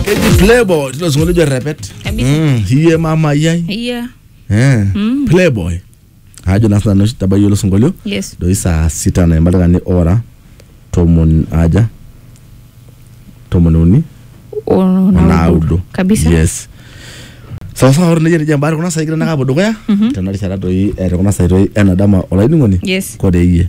keji playboy tilo sinkolio ojo repet Kabisa. Mm, hiye mama yai Yeah. Eh, Mm. playboy ajo naa sinanu oshi tabayie ilo sinkolio Yes. doi saa sita na ematakani ora tomon aja tomon uni Ono- onaudo Kabisa. yes sawasawa ore nejia nejia mbaare kuna sai kira nakapo dukuya tena rishata doi eh, te kuna sai doi enadama olainining'oni Yes. kore iyie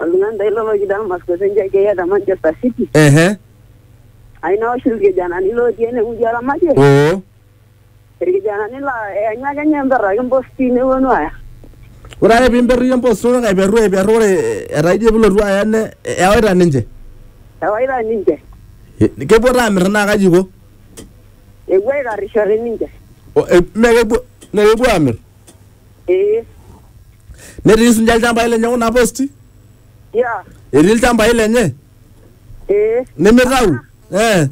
oltung'ani dai loloki Damasko te njai keyiata Manchester City ehe aina oshi irkijanani lootii enewueji oramatie oo irkijanani laa eanyu ake ninye emperraki imposti neponu aaya ore ake piimperru iyie empost ore aiperru aiperru ore etaa ijo pilotu aya ne ewaita ninche ewaita ninche E- kepuo taa amirr naa kaji iko epuo aikarrishore ninche O- e- mee kepuo mee kepuo amirr Eh, netii sinche ilchambai lenye kuna posti yeah. etii ilchambai lenye Eh, nemitau eh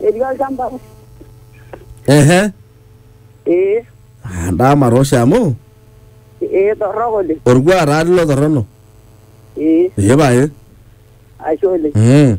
etii olchamba. ehe Eh, Ah, ndama tosha amu eh, torrok oleng. orkuak taa lilo torrono Eh, epae ashe oleng. mm.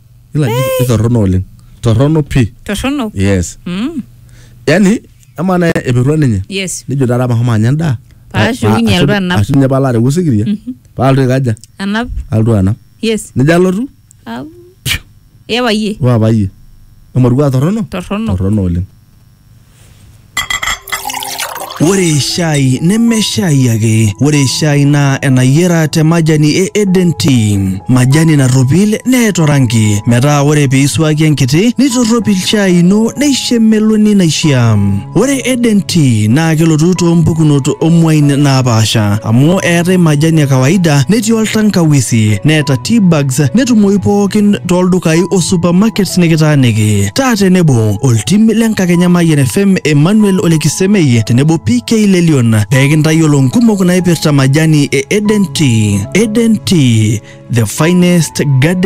Ila ni torrono oleng. Torrono pi. torrono Yes. mm. Yaani ama na epirua ninye. yes Nijo taata mahomo anya endaa. Paashukunye alotu anap. Ashu ninye palo areu osikiria. Palotu aikaja. anap Alotu anap. yes Nijo alotu. Au. iyapa iyie Waa payie. Emorua torrono. torrono Torrono oleng. Ore shai neme shai ake, ore shai naa enayiera te majani e Eden Tea, majani narropil neeta oranki metaa ore pee isuaki enkiti nitorropil shai ino neisho emeloni naishia. Ore Eden Tea naa kelotu too mpukunot oo muain naapaasha amu eetae majani e kawaida netii oltankawisi neeta tea bags netumoyu pookin too ldukai o supermarkets nikitaaniki. Taa tenebo oltim le nkakenya Mayian FM Emmanuel Olekisemei tenebo PK Lelion pee kintayiolo nkumok naipirta majani e Eden Tea. Eden Tea, the finest garden